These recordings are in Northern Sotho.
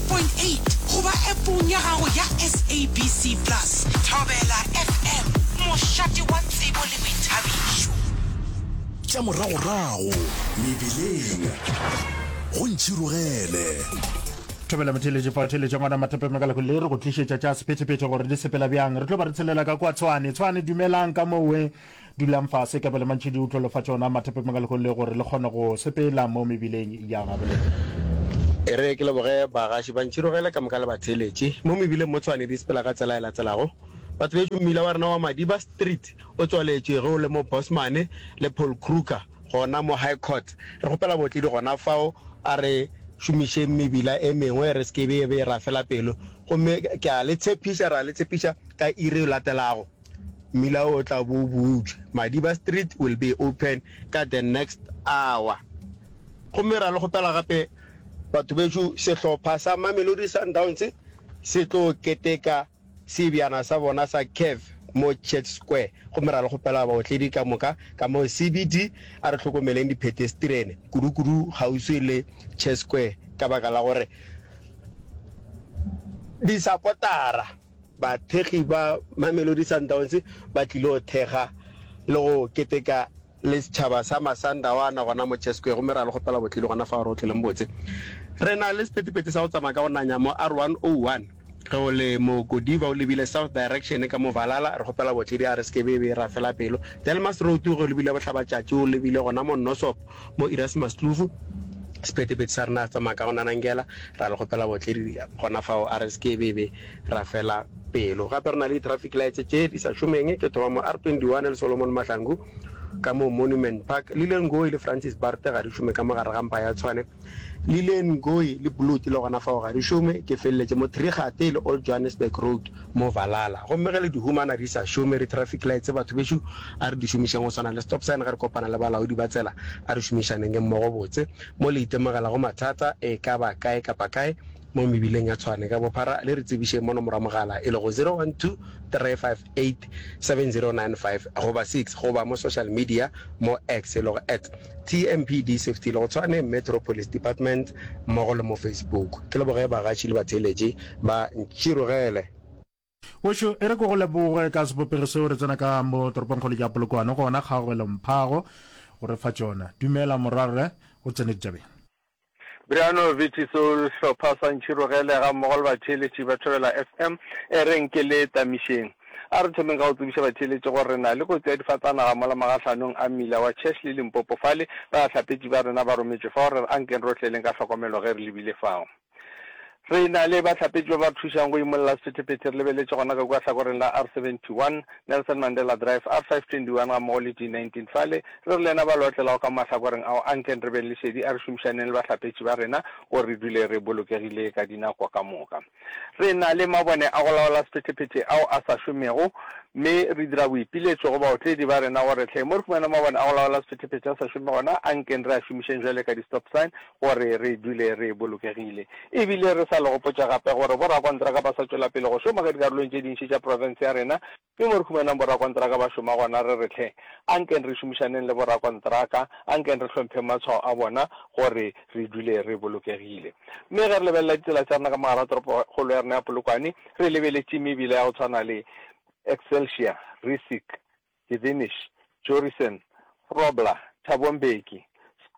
103.8 goba Appong ya gago ya SABC Plus. Thobela FM, mošate wa tsebo le boithabišo. Tša moragorago mebeleng go ntšhirogele. Thobela Motheeletši Pao Theeletša Ngwana Mathepe Mekalako le re go tlišetša tša sephetephete gore di sepela bjang. Re tlo ba re tshelela ka kua Tshwane. Tshwane dumelang ka mowe. Dulang fase ka bele mantši di utlwelo fa tšona mathepe manga lehong le gore le kgone go sepela mo mebileng ya gabolena. E re ke leboge bagaši ba ntširogele ka moka le batheeletši mo mebileng mo Tshwane di sepela ka tsela e latelago. Batho bešu mmila wa rena wa Madiba Street o tswaletšwe ge o le mo Bosman le Paul Kruger gona mo High Court. Re kgopela bootledi gona fao a re šomišeng mebila e mengwe re se ke be e be e rafela pelo gomme ke a le tshepiša, re a le tshepiša ka iri e latelago. Mmila o tla bo o butšwe. Madiba Street will be open ka the next hour. Gomme ra le kgopela gape batho bešo, sehlopha sa Mamelodi Sundowns se tlo keteka seebjana sa bona sa CAF mo Church Square. Gomme ra le kgopela baotledi ka moka ka mo CBD, a re hlokomeleng diphetestrene, kudukudu kgauswi le Church Square ka baka la gore disapotara. Bathekgi ba Mamelodi Sundowns ba tlilo thekga le go keteka le setšhaba sa Masandawana gona mo Chess Square gomme re a le kgopela botlile gona fao re go tloleng botse. Re na le sepetepete sa go tsamaya ka go nanya mo R101 ge o le mo Godiva o lebile south direction ka mo Valala, re kgopela botledi a re se ke be be ra fela pelo. Delmas Road ge o lebile Bohlabatšatši o lebile gona mo Nosop Mo Erasmus Tluvu, sephethephethe sa rena a tsamaya ka go nanangela, ra le kgopela botledi gona fao a re se ke be be ra fela pelo. Gape re na le di-traffic lights tše di sa šomeng tše thoma mo R21 le Solomon Mahlangu ka mo Monument Park. Lillian Ngoyi le Francis Barte ga di šome ka mo gare ga mpa ya Tshwane. Lillian Ngoyi le Bloot le gona fao ga di šome, ke feleletše mo Three Gate le Old Johannesburg Road. mo valala gomme ge le di humana di sa šome re traffic lights batho bešo a re di šomišeng go swana le stop sign ge re kopana le balaodi ba tsela a re šomišanenge mmogo botse mo le itemogela go mathata e ka ba kae kapa kae mo mebileng ya Tshwane ka bophara le re tsebišeng mo nomoro ya mogala e lego 0123587095 goba 6 goba mo social media mo X e lego at TMPD Safety le go tshwane Metro Police Department mmogo le mo Facebook. Ke leboge bagatši le batheeletši ba Ntširogele. Wešo e re ko go leboge ka sebopego seo re tsena ka mo toropongkgolong ya Polokwane gona kgaogelong phago go re fa tšona. Dumela morwarre, o tsene ditšabeng. Bryano Viti Sehlopha sa Ntšhirogele gammogo le batheeletši ba Thobela FM e reng ke le tamišeng. A re thomeng ka go tsebiša batheeletši gore re na le kotsi ya difatanaga mola magahlanong a mmila wa Church le Limpopo fale, bahlapetši ba rena ba rometšwe fao re re ankeng rohleleng ka hlokomelo ge re lebile fao. Re na le bahlapetši ba ba re thušang go imolla sephethephethe re lebeletše gona ka kua hlakoreng la R71, Nelson Mandela Drive, R521 gammogo le G19. Fale re re le yena ba leotlelago ka mo mahlakoreng ao, anken re beng le šedi a re šomišaneng le bahlapetši ba rena gore re dule re bolokegile ka dinako ka moka. Re na le mabone a go laola sephethephethe ao a sa šomego mme re dira boipiletšo go baotledi ba rena gore hleng mo re humana mabone a go laola sephethephethe a sa šome gona, anken re a šomišeng bjalo ka di-stop sign gore re dule re bolokegile e bile re sa le gopotša gape gore borakontraka ba sa tšwela pele go šoma ka dikarolong tše dintši tša profense ya rena mme mo re humanang borakontraka ba šoma gona re re tlhe a nkeng re šomišaneng le borakontraka a nkeng re hlompheng matshwao a bona gore re dule re bolokegile mme ge re lebelela ditsela tša rena ka mogara toropokgolo ya rena ya polokwane re lebeletše mebila ya go tshwana le excelsior risic Gevinich, Jorisen, Grobler, Thabo Mbeki,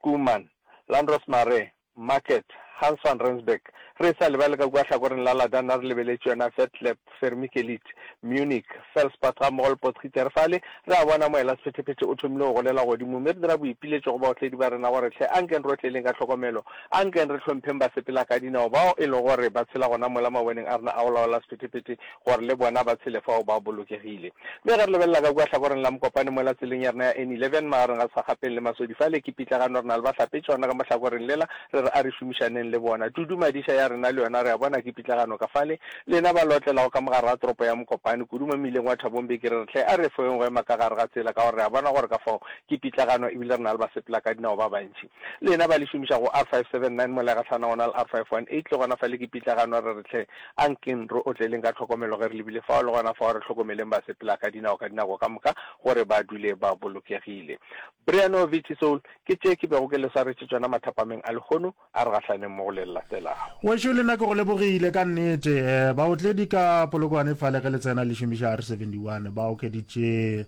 Schoeman, Landros Mare, Market, Hans van Rensburg, re sa lebale ka kua hlakoreng la Ladana re lebeletše yona Vetlab, Vermikelid, Munich, Felspad gammogo le Potgieter. Fale re a bona moela-sephetephete o thomile go golela godimo, mme re dira boipiletšo go baotledi ba rena gore, Hle ankeng re otleleng ka tlhokomelo, ankeng re hlompheng basepelakadinao bao e lego gore ba tshela gona mola maboneng a rena a go laola sephetephete. gore le bona ba tshele fao ba bolokegile. Mme ge re lebelela ka kua hlakoreng la mokopane mola tseleng ya rena ya N11 magareng ga Sagapeng le Masodi fale, ke pitlagano re na le bahlapetšona ka mo hlakoreng lela, re re a re šomišaneng le bona. Tudu Madiša ya rena le yona re a bona ke pitlagano ka fale. Lena ba le otlelago ka mogare ga toropo ya Mokopane, kudu mo mmileng wa Thabong be ke re re hle a re efoeng go ema ka gare ga tsela ka gore re a bona gore ka fao ke pitlagano e bile re na le basepelakadinao ba bantši. Lena ba le šomiša go R579 Molegatlhana go na le R518 le gona fa le ke pitlagano re re hle a nkeng re otleleng ka tlhokomelo ge re lebile fao le gona fao re hlokomeleng ba sepela ka dinao ka dinako ka moka gore ba dule ba bolokegile. Briano Vici Soul ke tše ke bego ke le swaretše tšona mathapameng a lehono a re gahlaneng mo go le latelago. Wešo le nna ke go lebogile ka nnete. Baotledi ka Polokwane fale ge le tsena le šomiša R71 ba okeditše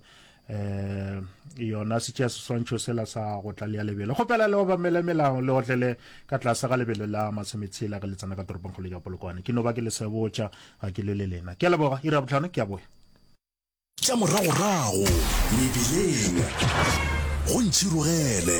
eh yona se tšea seswantšho sela sa go tlalea lebelo go pela le obamele melao le otlele ka tlase ga lebelo la masemetshela ge le tsena ka toropong kgolo ya polokwane ke no ba ke le sebotša ga ke le le lena ke a leboga ira botlhano ke a boya tša moragorago mebileng go ntšhirogele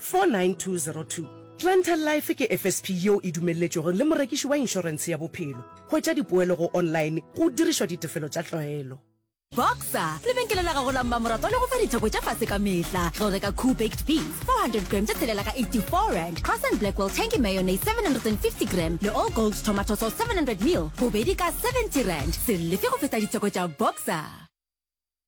49202. Glental Life ke FSP yeo e dumelletšwego le morekiši wa inšorense ya bophelo. Hwetša dipoelo go online go dirišwa ditefelo tša tlwaelo. Boxer, lebenkele la gago la mmamoratwa le go fa ditheko tša fase ka mehla. Tlo reka Koo Baked Beef, 400 gram tše tshelela ka 84 rand, Croissant Blackwell Tangy Mayonnaise, 750 gram, le All Gold Tomato Sauce, 700 ml, bobedi ka 70 rand. Se lefe go feta ditheko tša Boxer.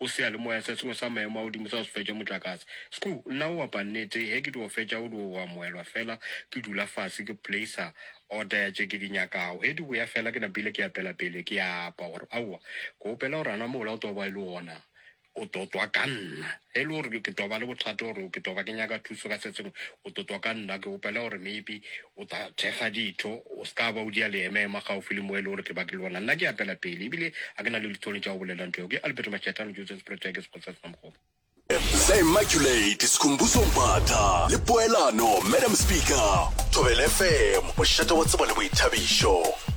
O seyalemoya se sengwe sa maemo a godimo sa go se fetša motlakase. Sku, nna o opa nnete, ge ke dio fetša go dio go amogelwa fela, ke dula fase, ke placer order ya tše ke di nyakago. Ge di boya fela, ke napile ke apela pele, ke a apa gore, Aowa, ke opela gore a na mola o tlo ba e le gona o tlo twa ka nna. Ge e le gore ke tlo ba le bothata gore ke tlo ba ke nyaka thuso ka se sengwe, o tlo twa ka nna. Ke opela gore maybe O tla thekga ditho, o se ka ba o dia leeme, ema kgaufsi le moeli o re ke ba ke le wena. Nna ke apela pele, e bile ga ke na le litsone tša go bolela ntho yeo. Ke Alberto Mashatane, Joseph Spretoe, ke Sekgosi sa Senamokgopa. Hle Immaculate, Sikhumbuzo Mbatha le Poelano, Madam Speaker, Thobela FM, mošate wa tsebo le boithabišo.